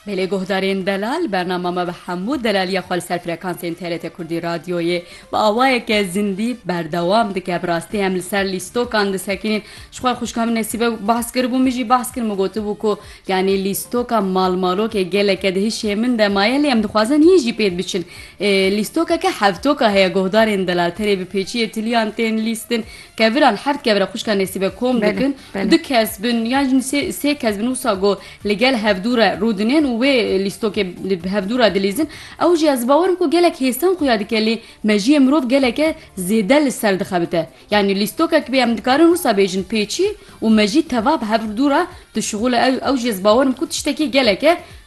Belê guhdarên delal bernama me bi hemû delaliya xwe li ser frekansên TRT Kurdî radyoyê bi awayeke zindî berdewam dike. Bi rastî em li ser lîstokan disekînin. Ji xwe xwişka min Nesîbe behs kiribû min jî behs kir min gotibû ku yanî lîstoka malmalokê geleke di hişê min de maye lê em dixwazin yên jî pêd biçin. Lîstokeke hevtoka heye guhdarên delal terê bi pêçiyê tiliyan tên lîstin. Keviran heft kevira xwişka Nesîbe kom dikin û du kes bin yan jî sê sê kes bin wisa ku li gel hevdû re rû dinên û wê lîstokê li hevdû re dilîzin ew jî ez bi bawer im ku gelek hêsan xuya dike lê mejiyê mirov geleke zêde li ser dixebite yanî lîstokek bê em dikarin wisa bêjin pêçî û mejî teva bi hevdû re dişuxule ew ew jî ez bawer im ku tiştekî geleke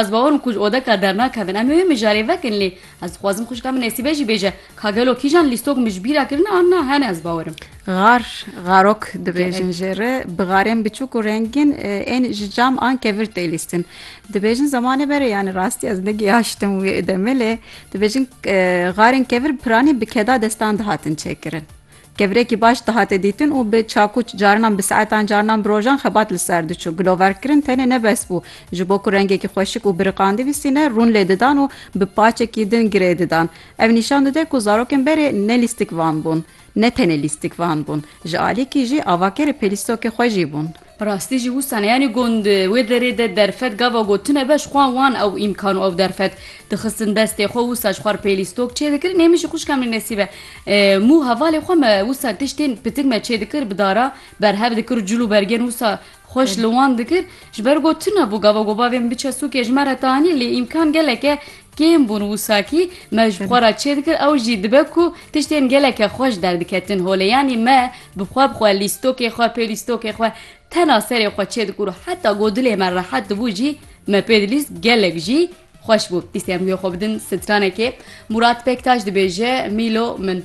Ez bawer im ku ji odeka dernakevin. Em ê wê mijarê vekin lê ez dixwazim xwişka min Nesîbe jî bêje ka gelo kîjan lîstok min ji bîr a kirine an na hene ez bawer im. Gar, garok dibêjin jê re. Bi garên biçûk û rengîn ên ji cam an kevir tê lîstin. Dibêjin zemanê me re yanî rastî ez negihaştim wê demê lê dibêjin garên kevir piranî bi keda destan dihatin çêkirin. Kevirekî baş dihate dîtin û bi çakûç carinan bi saetan carinan bi rojan xebat li ser diçû. Giloverkirin tenê ne bes bû. Ji bo ku rengekî xweşik û biriqandî bîstîne rûn lê didan û bi paçekî din girê didan. Ev nîşan dide ku zarokên berê ne lîstikvan bûn. Ne tenê lîstikvan bûn. Ji alîkî jî avakerê pêlîstokê xwe jî bûn. Bi rastî jî wisa ne. Yanî gund di wê derê de derfet gava gotine be, ji xwe wan ew îmkan û ew derfet dixistin destê xwe. Wisa ji xwe re pêlî stok çêdikirin. Ê min jî xwişka min Nesîb e. Mû hevalê xwe me wisa tiştên pitik me çêdikir, bi dara berhev dikir û cil û bergên wisa xweş li wan dikir. Ji ber gotine bû gava gobavê min biçe sûkê ji me re tanî. Lê îmkan gelek e. Kêm bûn wisakî me ji xwe re çêdikir ew jî dibe ku tiştên geleke xweş derdiketin holê yanî me bi xwe bi xwe lîstokê xwe pê lîstokê xwe tena serê xwe çêdikir û heta ku dilê me rehet dibû jî me pê dilîst gelek jî xweş bû dîstên guhê xwe bidin stranekê Mûrat Pektaş dibêje Mîlo min.